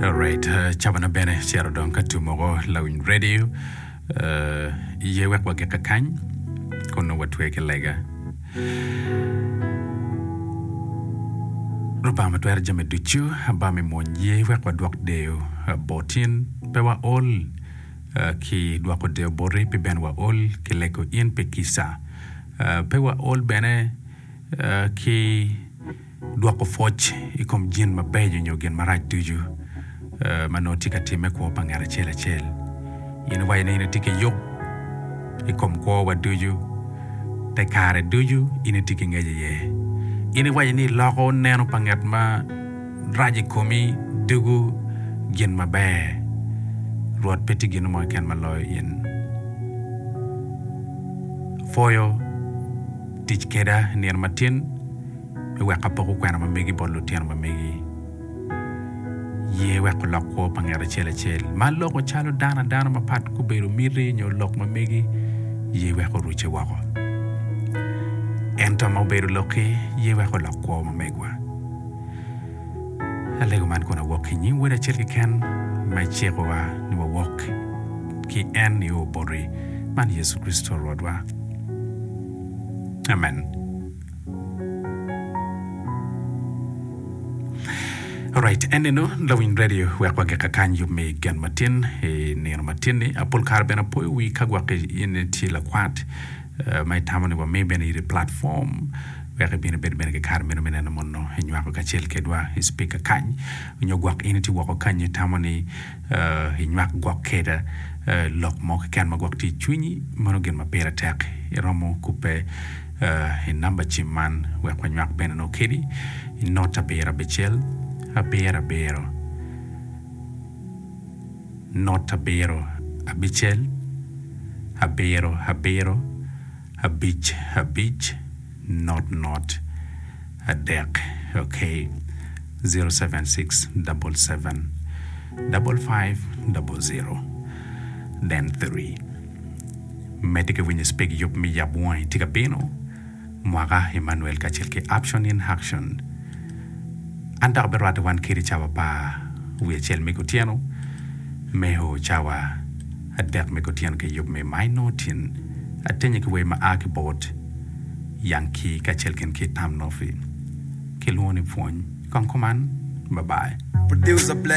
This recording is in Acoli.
Alright, uh, cabana bene cero dong ka tum oko lawiny radio uh, iye wek wagik kakany kun nongo watwe ki lega. Lubanga ma twero jami ducu aba me mwony ye wek wadwok deyo uh, botin pe waol uh, ki dwoko deyo boti pe ben waol ki lego in pe kisa uh, pe waol bene uh, ki Dwoko pwoc i kom gin mabeco nyo gin marac ducu ma nongo tye ka timme i kwo pa ngat acel acel. In iwaco ni in itye ki yub i kom kwowa ducu. Te kare ducu in itye ki ngec iye. In iwaco ni iloko neno pa ngat ma rac i komi ducu gin maber. Rwot pe tye gin mo keken ma loyo in. Apwoyo tic keda nino matin. me wek apoko kwena ma megi bot lutino ma megi. Ye wek olok kwo pa nget acel acel ma loko calo dano adano mapat gubedo miti nyo lok ma megi, ye wek orucce woko. Ento ma obedo lokki, ye wek olok kwo ma megwa. Alego man kun awok ki nying Wod acel keken ma icikowa ni wawok ki en nio boti, man Yecu Kricito Rwotwa. Amen. Alright, en eno lawiny radio wek wagika kany yub me gen matin i nino matin ni apol kare bene apoyo wi ka gwok in tye lakwat eh, ma itamo ni wami bene iri platform wek ibin ibed bene ki kare meno me neno mono inywako kacel kedwa i spika kany nyo gwok in itye woko kany itamo ni eh, inywak gwok keda eh, lok mo keken ma gwok tye i cwinyi mano gin ma pire tek iromo kubbe I namba cim man wek wanywak bene nongo kedi i not abiro abicel abiro abiro not abiro abicel abiro abiro abic abic not not adek ok zero seven six double seven double five double zero then three Medde ki winyo speg yub me yab wongi tye ka bino, mwaka Emmanuel kacel ki Uption in Haction. An dok abirwatte wan kedi cawa pa wi acel me kutyeno me o cawa adek me kutyeno ki yub me My Notin atenye ki wer ma a ki bot Young Key kacel kin ki Amnofi. Kilwongo ni pwony kong kuman. Babai. Producer Black.